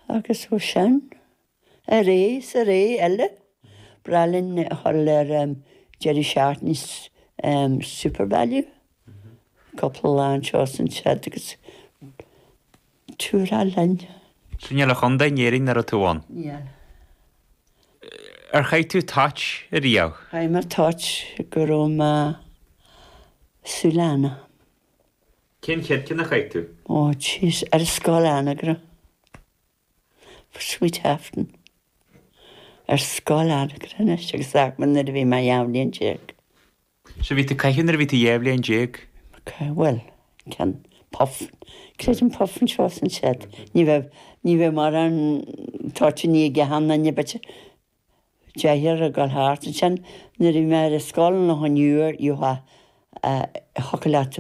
Agus ó sin, ar ais is ar ais eile. Breá linn a ghabháil ar deireadh seachtaine Supervalu cúpla lá anseo is ansiúd agus tura linn. 'S an bhfuil aon chontae in Éirinn nach raibh tú ann? Níl. Ar chaith tú toit riamh? Chaith mé toit go raibh mé súil ann. Cén chéad cheann a chaith tú? Ó, jeez, ar scoil Anagaire. For Sweet Afton. Ar scoil Anagaire anois agus Eagman nuair a bhí mé dhá bhliain déag. Sea, bhí tú ag caitheamh nuair a bhí tú dhá bhliain déag. Caitheamh, bhuel, ceann, puff, creidim puff anseo is ansiúd. Ní bheadh, ní bheadh mórán toitíní i gceann na n-ibid. Téatar ag dul thart ansin. Nuair a bhí mé ar scoil Loch an Iúir, you ha, eh, thiocfadh leat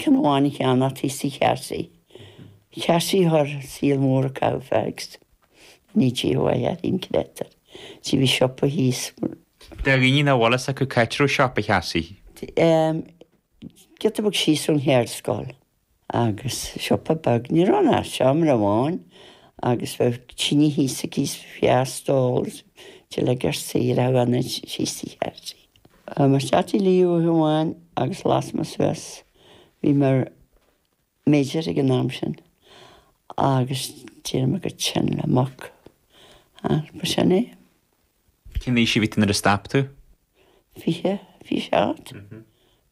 ceann amháin a cheannacht thíos tigh Chearsaí. Cearsaí a chuir an saol mór a chaitheamh fags in each year you ha had an créatúr. Sea, bhí siopa thíos. Do dhaoine nach bhfuil fhios acu cá háit a raibh siopa Chearsaí. T, em, giota beag síos ón cheardscoil. Agus siopa beag, ní raibh ann ach seomra amháin, agus bheadh tine thíos aici is feá stól is tuilleadh geir saoire a bhfanfainn síos tigh thairsti. Chuir mo Chatty Lee uaithi amháin agus las me suas. Bhí mé ar Major ag an am sin, agus d'éirigh mé chomh tinn le muc, agus ba sin é. Cén aois a bhí tú nuair a stop tú? Fiche, fiche a hocht,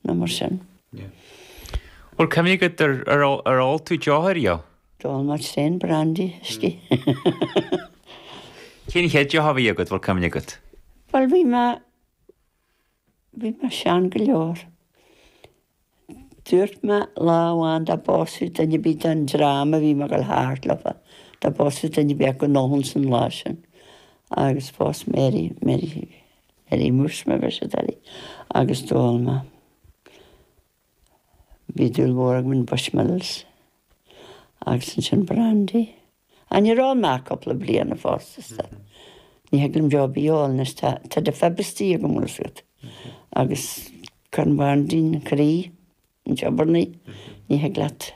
nó mar sin. Bhfuil cuimhne agat, ar ól tú deoch ariamh? D'ól mé tréan brandy, whisky. Cén chéad deoch a bhí agat, bhfuil cuimhne agat? Bhuel, bhí mé. Bhí mé sean go leor. Dúirt mé lá amháin dá bpósfadh duine ar bith den dream a bhí mé ag dul thart leofa, dá bpósfadh duine ar bith acu, go n-ólfainnse an lá sin. Agus phós Mary, Mary, Mary Mhúscraí mar a bheir siad uirthi, agus d'ól mé. Bhí dúil mhór agam in Bushmills agus ansin Brandy. Ah, níor ól mé le cúpla bliain fosta, is dóigh. Ní thig liom deoir ar bith a ól anois, tá, tá diabetes agam, bhfuil 'fhios agat. Agus cuireann Brandy an croí ag preabarnaigh, ní thig leat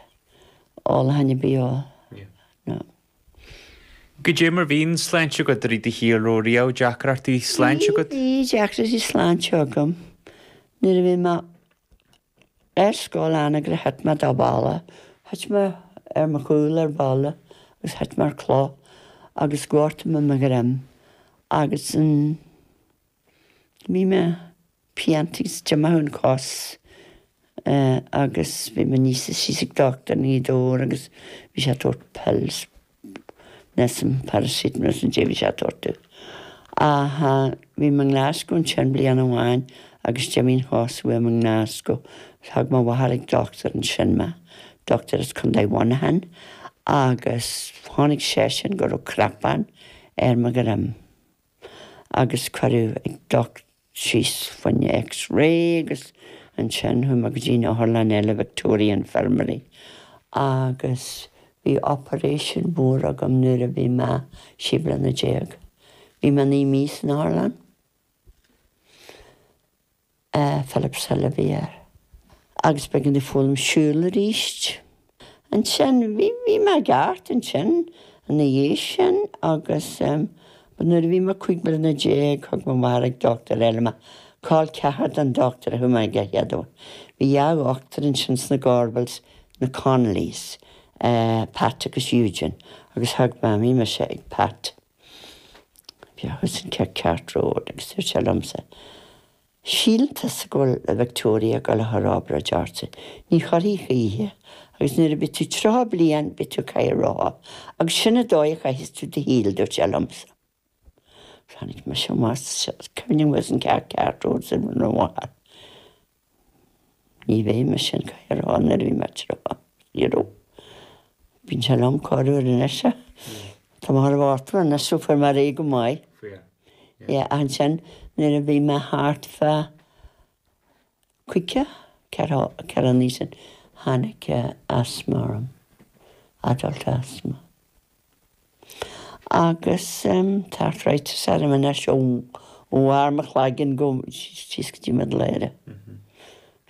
ól a dhath ar bith a ól. Cad é mar a bhí an tsláinte agat i rith do shaoil raibh riamh deacrachtaí sláinte agat? Bhí deacrachtaí sláinte agam nuair a bhí mé ar scoil Anagaire thit mé de bhalla, thit mé ar mo chúl ar bhalla agus thit mé ar chloch agus ghortaigh mé mo dhroim agus an. Bhí mé piantaí sa tseomra thar an cos agus bhí mé aníos is síos ag dochtúir i nGaoth Dobhair agus bhí sé ag tabhairt pills, níl a fhios agam, paracetamol nó caidé a bhí sé ag tabhairt domh. Ach bhí mé i nGlasgow ansin bliain amháin agus d'imigh an chos uaim i nGlasgow. Thug mo mháthair ag dochtúir ansin mé, dochtúir as Contae Mhuineacháin, agus chonaic seisean go raibh cnapán ar mo dhroim. agus cuireadh ag docht síos fá choinne X-ray agus ansin chuaigh mé go dtí'n otharlann eile, Victoria Infirmary, agus bhí operation mór agam nuair a bhí mé trí bliana déag. Bhí mé naoi mí san otharlann. i Philipshill a bhí. Agus b'éigean domh foghlaim siúl arís ansin. Bhí, bhí mé i gceart ansin ina dhiaidh sin agus but nuair a bhí mé cúig bliana déag thug mo mháthair ag dochtúir eile mé, col ceathar den dochtúir a chuaigh mé aige an chéad am. Bhí dhá dhochtúir ansin sna Gorbals, na Connollys, eh, Pat agus Eugene, agus thug Mamaí mise ag Pat. Bhí thuas in Cathcart Road, agus dúirt sé liomsa, Síleann tusa go bhfuil an Victoria ag dul a chur obair i gceart. Ní chuirfidh choíche, agus nuair a bheas tú tríocha bliain, beidh tú i gcathaoir rotha, agus sin an dóigh a chaithfeas tú do shaol, dúirt sé liomsa. Tháinig mise amach, agus cuimhním thuas in Cathcart Road, sin rud an-mhaith. Ní bheidh mise i gcathaoir nuair a bhí mé tríocha fíorú. Bíonn sé liom corruair anois, tá mé thar bhartla anois, so fuair mé ar aghaidh go maith. Yeah, ansin nuair a bhí mé thart fá chaoga, ceathracha naoi sin, tháinig asthma orm, adult asthma. Agus tá arthritis orm anois ó bharr mo chloiginn go síos go dtí mo ladhra.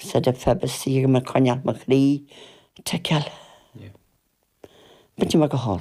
Said have fed us, d'iarr mé coinneáil mo chroí, ticeáil. B'in mé go hard.